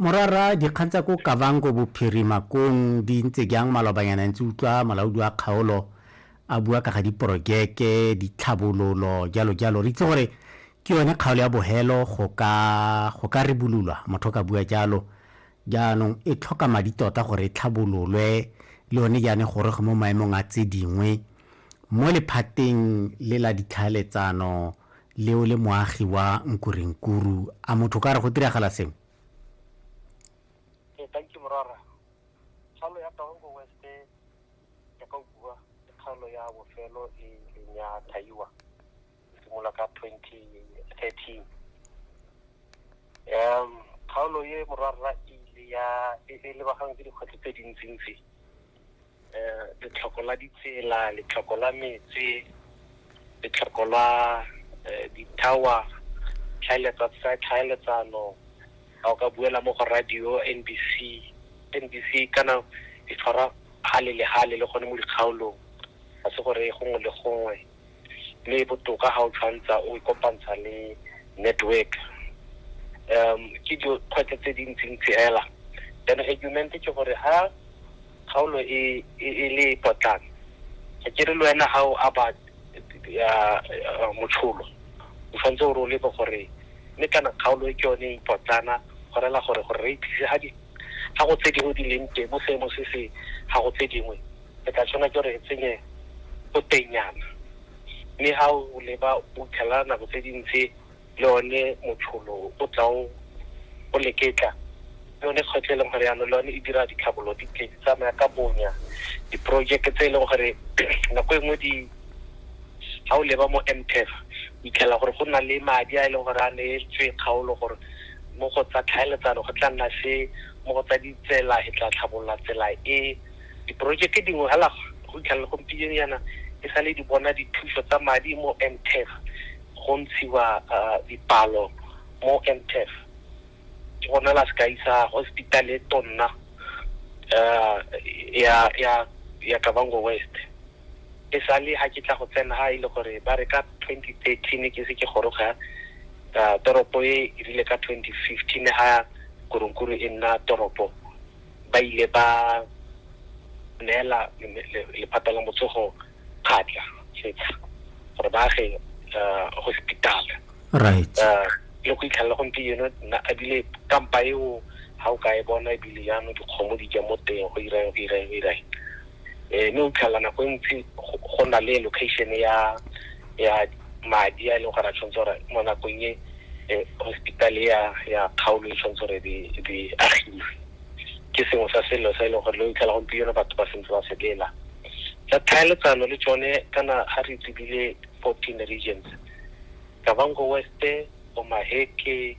Morara, dikgang tsa ko Kavango Bophirima kong di ntse jang malobanyana ntse utlwa molaodi wa kgaolo a bua ka ga diporojeke, ditlhabololo, jalo jalo. Re itse gore ke yone kgaolo ya bohelo go ka go ka ribololwa, motho ka bua jalo. Jaanong e tlhoka madi tota gore e tlhabololwe le yone jaana e goroge mo maemong a tse dingwe. Mo lephateng le la ditlhaeletsano le o le moagi wa nkurenkuru a motho ka re go diragala sengwe ee thank you morara kgalo ya taongo west ya ka bua ke kgalo ya bofelo e leng ya thaiwa e simolola ka twenty thirteen um kgaolo e morara e ile ya e lebagang ke dikgwetlho tse dintsintsi letlhoko la ditsela letlhoko la metsi letlhoko la di-tower tlhaeletsano ga o ka buela mo go radio N_B_C, N_B_C kana e tshwara hale le hale le gone mo dikgaolong ga se gore gongwe le gongwe. le e botoka ga o tshwantsha o e kopantsha le network um ke dikgwetlho tse dintsintsi fela then argument ke gore ha kgaolo e, e, e le potlana ga ke re le wena ga o aba motsholo o tshwanetse o role bo gore mme kana kgaolo e ke yone e potlana go rela gore gore re itlise ga go tse dingwe di leng teng mo seemo se se ga go tse dingwe re ka tshwana ke gore re tsenye botenyana mme ga o leba o fitlhela nako tse dintsi le one motsholo o tlaong o leketla le one kgwetlho e leng gore yanong le one e dira ditlhabolo di tle di tsamaya ka bonya diporojeke tse e leng gore nako e nngwe di ga o leba mo mtef itlhela gore go nna le madi a e leng gore a neetswe kgaolo gore mo go tsa tlhaeletsano go tla nna se mo go tsa ditsela e tla tlhabolola tsela e Diporojeke dingwe hala fa go fitlha le gompieno yana di sale di bona dithuso tsa madi mo MTEF go ntshiwa dipalo mo MTEF. Ke gona la sekai sa hospital e tonna ya Kavango West. E sale ha ke tla go tsena ha e le gore ba re ka 2013 ke se ke goroga toropo e rile ka 2015 ha Goronkuru e nna toropo. ba ile ba neela lephata la motsogo kgatla setsha gore ba age eh, hospital right eh, le go itlhelela gompieno ebile kampa eo ga o ka e bona ebile jaanong dikgomo di ja mo teng go irang go irang go irang um mme o tlhelela nako e ntsi go na le location ya ya madi a e leng gore a tshwanetse gore mo nakong e eh, hospital ya ya kgaolo e tshwanetse gore di di agiwe ke sengwe sa selo sa e leng gore lo itlhela gompieno batho ba sentse ba selela tsa tlhaeletsano le tsone kana ga re tsebile fourteen regions kavango west omaheke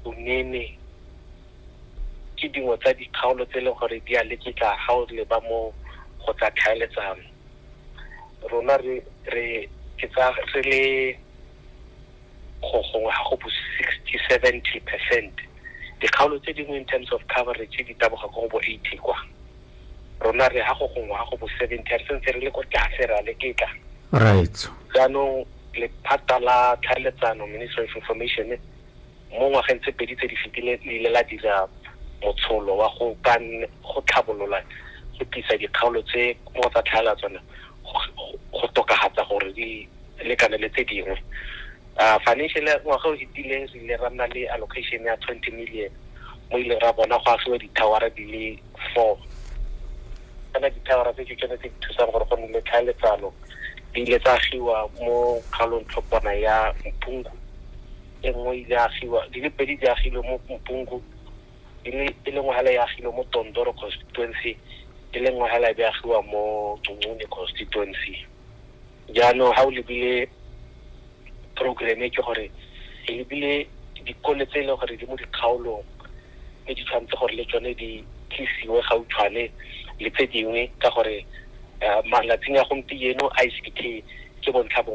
unene ke dingwe tsa dikgaolo tse e leng gore di a leketla ga o leba mo go tsa tlhaeletsano rona re re ke tsa re le go gongwe ga go bo sixty seventy percent dikgaolo tse dingwe in terms of coverage di taboga ko go bo eighty kwa rona re ga go gongwe ga go bo seventy re sentse re le ko tlase re a le ketla right jaanong lephata la tlhaeletsano ministry of information mo ngwageng tse pedi tse di fetileng le ile la dira motsholo wa go ka go tlhabolola go tlisa dikgaolo tse mo tsa tlhaela tsone go tokagatsa gore di lekane le tse dingwe uh, financial ngwaga o fetileng re ile ra nna le allocation ya twenty million mo ileng ra bona go agiwa di-towera di le four kana dithawara tse ke tsone tse di thusang gore go nne le tlhaeletsano di ile tsa agiwa mo kgaolong tlhopana ya mpungu e nngwe ile agiwa di le pedi di agilwe mo mpungu e le e lengwe hela e agilwe mo tondoro constituency e lengwe hela e be agiwa mo tungune constituency jaanong ga o lebile program e ke gore e lebile dikole tse e leng gore di mo dikgaolong mme di tshwanetse gore le tsone di tlisiwe gautshwane le tse dingwe ka gore eh, malatsing a gompieno i c t ke bontlha bongwe